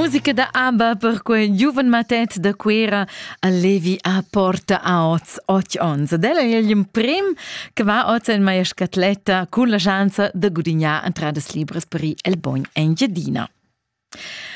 Musica da ABBA per quei giuven matet da Cuera a Levi a Porta oz och ons. Ed ella è l'emprim che va oz en meia scatletta cun la chance da gudignar entradas libras per il bogn Engiadina.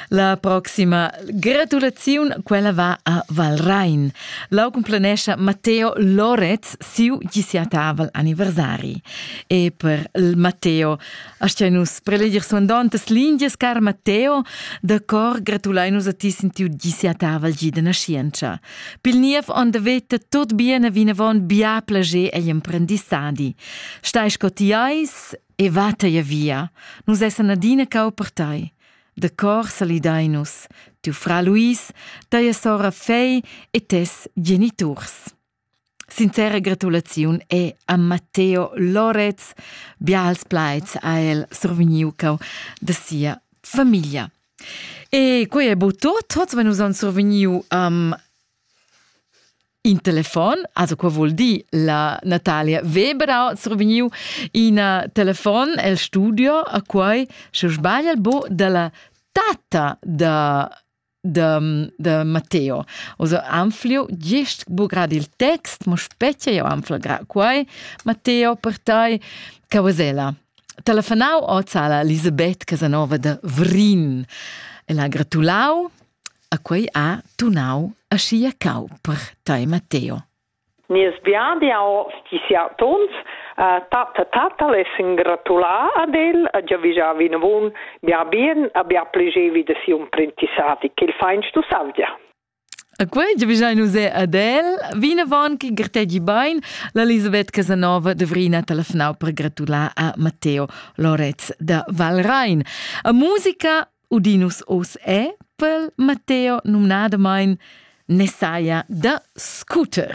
La proxima gratulaziun, quella va a Valrain. Lau complanescha Matteo Loretz siu disiataval anniversari. E per il Matteo Aschia nus preleger suandontas lingias, car Matteo, da cor gratulein nus a ti sentiu gi sia taval gi da nascientscha. Pil niev on da veta tot bien a vinavon bia plager egl emprendissadi. Stai sco ti eis e va tei via. Nus essan adina cau per tei. Da cor salidai nus, tiu fra Luis, teia sora Fei e tes geniturs. Sincera gratulaziun è a Matteo Lorez. Bials plaids ha el survegniu cau da sia famiglia. E quei è bo tot. Hoz wenn uns survegniu um, in telefon, also qua vuol dir la Natalia Weber ha survegniu ina telefon el studio a quai, se sbaglia bo dalla tata da de, de Matteo. Also anfliu gist bugrad il text, mo specie io anflio gra quai, Matteo per tai, Cavasella. Telefonau ozala Elisabeth Casanova de Vrin e la gratulau a quei ha tunau a sia cau per tai Matteo. Nies biadiau sti siatonts a tatta tatta lessen gratular ad el e giavischar vinavon bia bien e bia plegevi da siu imprendissadi ch'el fa in Stussavgia. E quei giavischein nus ad el. Vinavon che grtegi bein, l'Elisabeth Casanova dovrina telefonau per gratular a Matteo Loretz da Valrein. A musica Udinus oz è, pel Matteo numnadamain, Messiah da scooter.